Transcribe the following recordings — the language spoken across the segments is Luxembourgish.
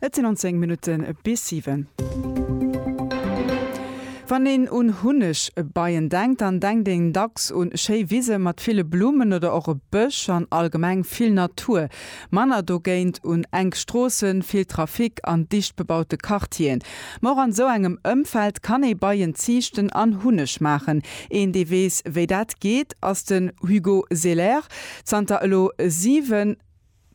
Et sinn an 10 Minutte bis 7. Wann een un Hunnegbeien denkt, dann denkt een dacks un schéi Wise mat ville Blummen oder och e Bësch an allgemeng vill Natur. Manner dogéint un enk Stroossen, vill Trafic an dicht bebaute Quartieren. Ma och an esou engem Ëmfeld kann ee Beien ziichten an Hunneg maachen. Een, dee weess, wéi dat geet, ass den Hugo Selaire. Zanter elo 7.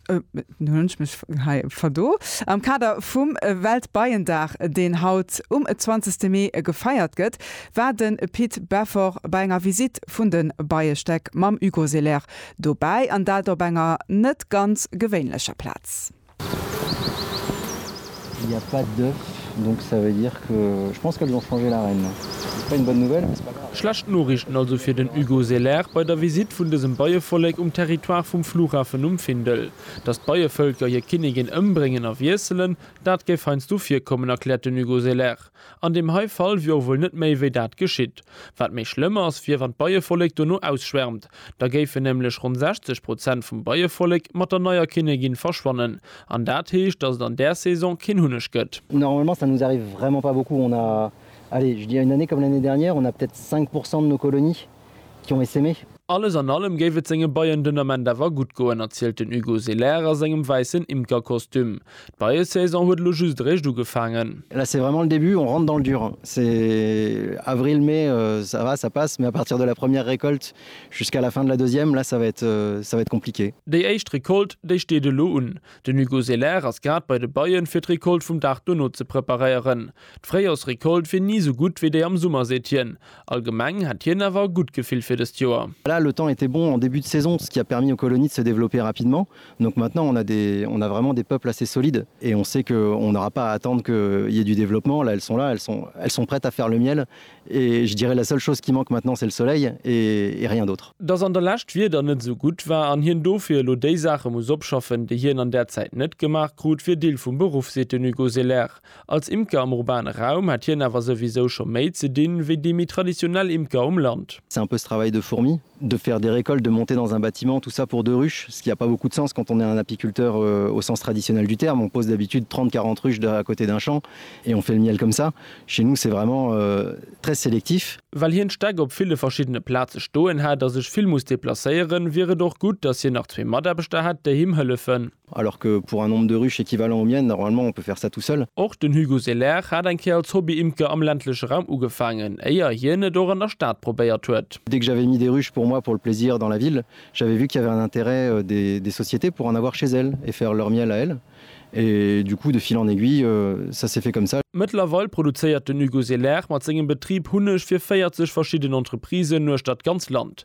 hunn ech mech hei verdo. Am Kader vum Weltbeiendag, deen haut um 20 Mee gefeiert gëtt, war de Pit Beffort bei enger Visitt vun de Beiestäck mam Hugo Selair dobäi, an dat op enger net ganz gewéinlecher Plaz. Schlecht Noriichten also fir den Hugo Selaert bei der Visitt vun dësem Beievollek um Territoire vum Flughafen um Findel. Datt d'Beievëlker hir Kinnigin ëmbréngen a wiesselen, dat géif heiansdo virkommen, erkläert den Hugo Selaert. An deem hei Fall wier och wuel net méi wéi dat geschitt. Wat méi schlëmm ass, wier wann d'Beievollek dono ausschwärmt. Da géifen nämlech ronn 60 Prozent vum Beievollek mat der neier Kinnegin verschwannen. An dat heescht, dass et an där Saison keen Hunneg gëtt. Normalement ça nous arrive vraiment pas beaucoup, on a, allez je dirais une année comme l'année dernière, on a peut-être 5 pourcent de nos colonies. Junge se mech. Alles an allem géif et senge Beien den Ament awer gutt goen, erzielt den Hugo Selaire a sengem wäissen Imkerkostüm. D'Beiesaison huet elo just eréischt ugefaangen. Là c'est vraiment le début, on rentre dans le dur, hein. C'est avril, mai, ça va, ça passe, mais à partir de la première récolte jusqu'à la fin de la deuxième, là ça va être, ça va être compliqué. Déi éischt Recolte, déi steet elo un. Den Hugo Selaire ass grad bei de Beien, fir d'Recolte vum Dag dono ze preparéieren. D'Fréijorsrecolte wier ni esou gutt wéi déi am Summer, seet hien. Allgemeng hätt hien awer e gutt Gefill fir dëst Joer. Voilà, le temps était bon en début de saison, ce qui a permis aux colonies de se développer rapidement. Donc maintenant on a des, on a vraiment des peuples assez solides et on sait que on n'aura pas à attendre qu'il y ait du développement. Là, elles sont là, elles sont, elles sont prêtes à faire le miel et je dirais la seule chose qui manque maintenant c'est le soleil et et rien d'autre. Dass an der Lescht d'Wieder net esou gutt war an hien dofir elo déi Saache muss opschaffen, déi hien an där Zäit net gemaach krut, wier Deel vum Beruff, seet den Hugo Selaer. Als Imker am urbane Raum hätt hien awer souwisou scho méi ze dinn, wéi déi méi traditionell Imker um Land. C'est un peu ce travail de fourmi, de faire des récoltes, de monter dans un bâtiment, tout ça pour deux ruches, ce qui a pas beaucoup de sens quand on est un apiculteur au sens traditionnel du terme, on pose d'habitude 30-40 ruches à côté d'un champ et on fait le miel comme ça. Chez nous c'est vraiment très sélectif. Well hien d'Stäck op ville verschiddene Plaze stoen hätt a sech vill muss deplacéieren, wier et och gutt, datt hien nach zwee Mataarbechter hätt, déi him hëllefen. Alors que pour un nombre de ruches équivalent aux miennes, normalement, on peut faire ça tout seul. Och den Hugo Selaire hat eng Kéier als Hobby-Imker am ländleche Raum ugefaangen, éier hien et och an der Stad probéiert huet. Dès que j'avais mis des ruches pour moi pour le plaisir dans la ville, j'avais vu qu'il y avait un intérêt des sociétés pour en avoir chez elles et faire leur miel à elles. Et du coup, de fil en aiguille, ça s'est fait comme ça. Mëttlerweil produzéiert den Hugo Selaire mat sengem Betrib Hunneg fir 40 verschidden Entreprisen uechter d'ganz Land.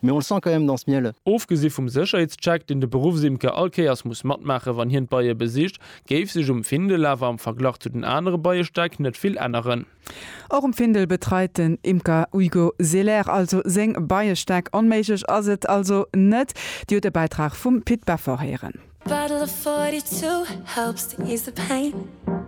Mais on le sent quand même dans ce miel. Ofgesi vum Sécherheetscheck, deen de Beruffsimker all Kéiers muss matmaache wann hien d'Beie besicht, géif sech um Findel awer am Verglach zu den anere Beiestäck net vill änneren. Och um Findel betreit den Imker Hugo Selaire also seng Beiestäck. Onméiglech ass et also net. Dir hutt e Bäitrag vum Pit Beffort héieren.